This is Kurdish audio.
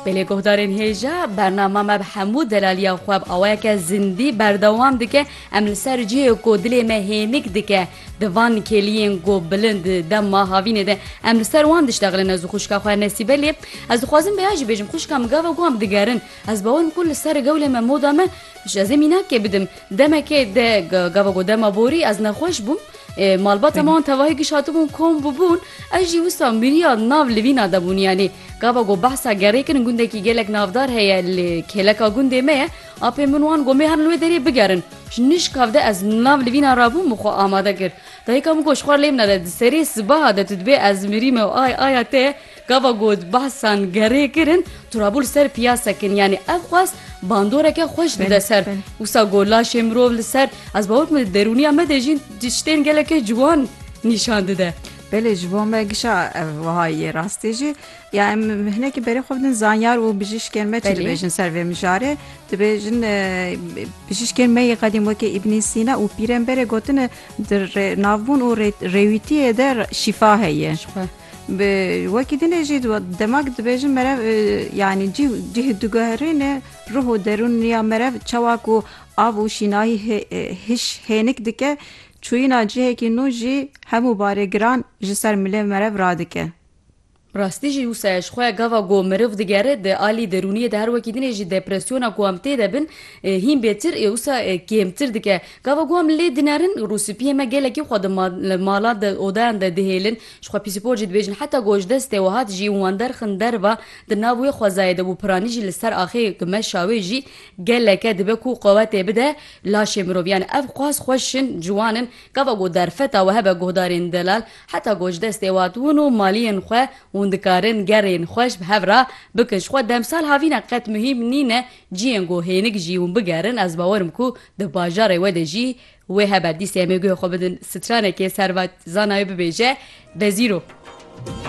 Bi lê guhdarên hêja bernama me bi hemû delaliya xwe bi awayeke zindî berdewam dike. Em li ser cihê ku dilê me hênik dike di van kêliyên ku bilind dema havînê de em li ser wan diştexilin ez û xwişka xwe Nesîbe lê ez dixwazim vêya jî bêjim xwişka min gava ku em digerin ez bawer ku li ser gewlê me moda me ji ez ê mînakê bidim demekê de gava ku dema borî ez nexweş bûm. Malbata me an tevahî giş hatibûn kom bûbûn, ez jî wisa mîriya nav li vîna de bûn yanî. Gava ku behsa gerê kirin gundekî gelek navdar heye li kêleka gundê me ye, apên min wan ku me herin li wê derê bigerin. Ji nişk hev de ez nav li vîna rabûm min xwe amade kir. Dayika min got ji xwe lê bine de di serê sibaha de tu dibê ez mirîme û ay aya te Gava ku behsan gerê kirin tu rabû li ser piyasek in yanî ev xwest bandoreke xweş dide ser. Wisa ku laşê mirov li ser ez bawer dikim li derûniya me de jîn tiştên gelekê ciwan nîşan dide. Belê ji bo me gişa ev wiha ye rastî jî ya em hinekî berê xwe bidin zanyar û bijîşkên me çi dibêjin ser vê mijarê dibêjin bijîşkên me yê qedîm wekî Îbnî Sîna û pîremberê gotine di navbûn û rêwîtiyê de şîfa heye. Bi wekî din e jî dema ku dibêjin merev yanî cîh cîh diguherîne ruh û derûn ya merev çawa ku av û şînayî hîş hênik dike çûyîna cihekî nû jî hemû barê giran ji ser milê merev radike. Bi rastî jî wisa ye ji xwe ya gava ku meriv digere di alî derûniyê de her wekî din e jî depresyona ku em tê de bin hîn bêtir ê wisa kêmtir dike. Gava ku em lê dinerin rûspiyê me gelekî xwe di malan de odayan de dihêlin Ji xwe pîsîpor jî dibêjin. Heta ku ji destê Wehat jî wan derxin derva di nav wê xwezayê de bû. Piranî jî li ser axê ku meşa wê jî geleke dibe ku quwetê bide laşê mirov. Yanî ev xwaz xweş in, ciwan in. Gava ku derfeta we hebe guhdarên delal heta ku ji destê Wehat hûn û maliyên xwe hûn dikarin gerên xweş bi hev re bikin. Ji xwe demsal havîne qet muhîm nîne ciyên ku hênik jî hûn bigerin. Ez bawer im ku di bajarê we de jî Wê hebe dîsê em ê guhê xwe bidin stranekê serva zana wê bibêje Bezîro.